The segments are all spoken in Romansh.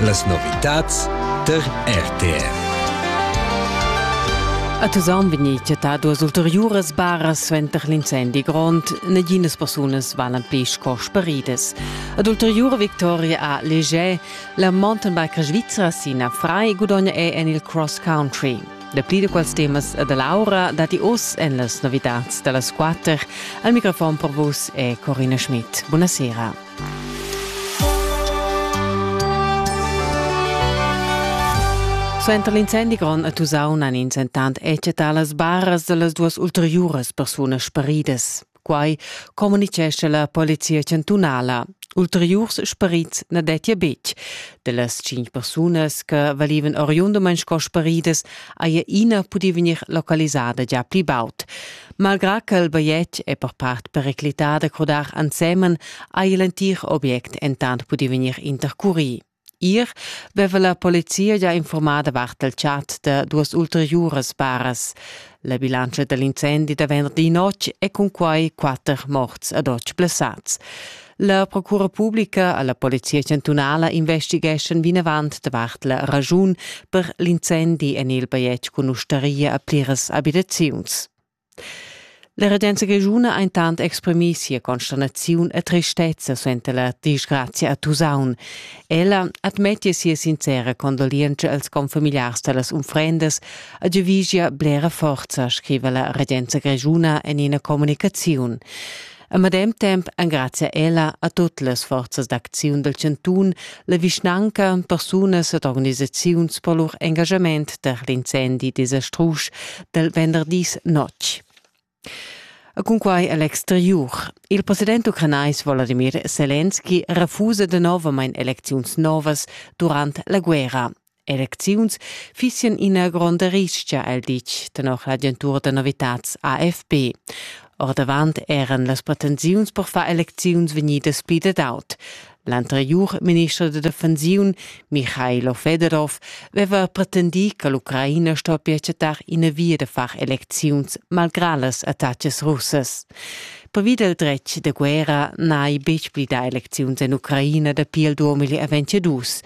Las novitads tar RTR. A Tusaun vegnì chattà duas ulteriuras baras suenter l'incendi grond. Naginas persunas valan pli sco sparidas. Ad ulteriura victoria a Leger, la mountainbike svizra Sina Fry gudogna è en il cross country. Dapli da quels temas da Laura dati oz en las novitads da las quatter. Al microfon per vus è Corina Schmidt. Buonasera. Suenter l'incendi grond a Tusaun han ins entant ecetà las barras da las duas ulteriuras persunas sparidas. Quai communitgescha la polizia chantunala. Ulteriurs sparits na dettia betg. Dellas cinc persunas che valivan oriundamein sco sparidas haja ina pudì vegnir localisada già pli baud. Malgrà ch'el bajetg è per part periclità da crudar ensemen, haja l'entir object entant pudì vegnir intercurì. Ier veva la polizia già informada vart del chat da duas ulteriuras baras. La bilantscha da l'incendi davent di notg è cun quai quatter morts ad otg blessats. La procura publica alla Polizia chantunala investigeschan vinavant davart la ragiun per l'incendi en il bajetg cun ustaria a pliras abitaziuns. La regenza grischuna ha intant exprimì sia consternaziun e tristezza suenter la disgrazia a Tusaun. Ella admettia sia sincera condolientscha als confamiliars da las unfrendas A giavischia blera forza, scriva la regenza grischuna en ina communicaziun. A medem temp engrazia ella a tut las forzas d'acziun del chantun, la vischnanca, persunas ed organisaziuns per lur engagament per l'incendi desastrusch del venderdis notg. E cunquai a l'exteriur. Il president ucranais Volodymyr Selenski refusa danovamain elecziuns novas durant la guerra. Elecziuns fissian ina gronda ristga, el ditg, tenor l'agentura da novitads AFP. Ordavant eran las pretensiuns per far elecziuns vegnidas pli dad aut. L'anteriur minister da defensiun Michailo Fedorov veva pretendì che l'Ucraina stoppia chattar ina via da far elecziuns malgrà las attacas russas. Pervi dal dretg da guerra n'hai betg pli dà elecziuns en Ucraina dapi il 2022.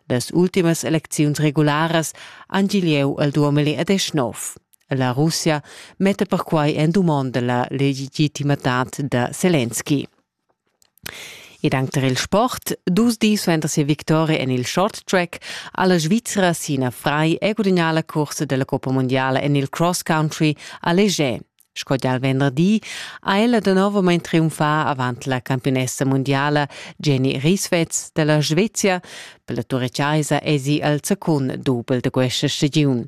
Las ultimas elecziuns regularas han gì lieu il 2019. La Russia metta perquai en dumonda la legitimitad da Zelensky. Ed anc tar il sport. Dus dis suenter sia victoria en il short track ha la Svizra Sina Frei è gudagnà la cursa da la Coppa mundiala en il cross country a Leger. Sco gia il venderdi ha ella da novamain triumfà avant la campionessa mundiala Jenny Rieswetz da la Svezia. Per la Turechaisa esi al secund dubel da questa stagiun.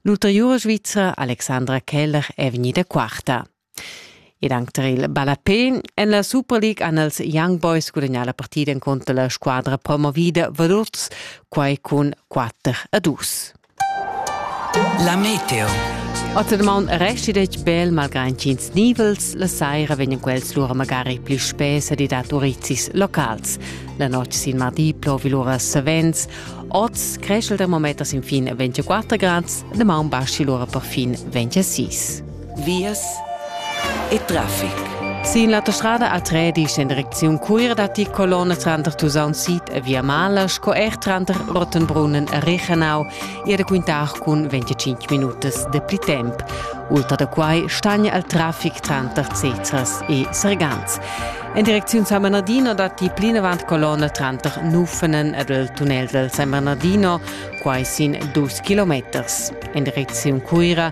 L'ulteriura Svizra Alexandra Keller è vegnida quarta. Ed anc tar il ballapén en la Super League han els Young Boys gudagnà la partida encunter la squadra promovida Valurz, quai cun 4 a 2. La meteo. Ottermaun resti detg bel malgrad ch'ins nivels, la saira vegnan quels lura magari pli spes ed dat urizis locals. La notg sin mardi plovi lura savens. Oz creschel termometers sin fin 24 grads, damaun baschi lura per fin 26. Vias e traffic. Sin l'autostrada a Tredisch en direcziun Cuira datti colonna tranter Tusaun Sid e Via Mala sco er tranter Rottenbrunnen e Rechenau e da quintar cun 25 minutas de pli temp. Ultra da quai stagna il traffic tranter Cezras e Sergans. En direcziun San Bernardino datti plinavant colonna tranter Nufenen ed il tunnel del San Bernardino, quai sin dus kilometers. En direcziun Cuira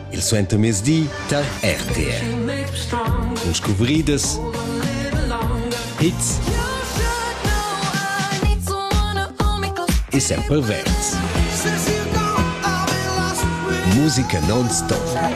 Il suentermezdi tar RTR. Cun scuvridas, hits e sempre verds. Musica non-stop.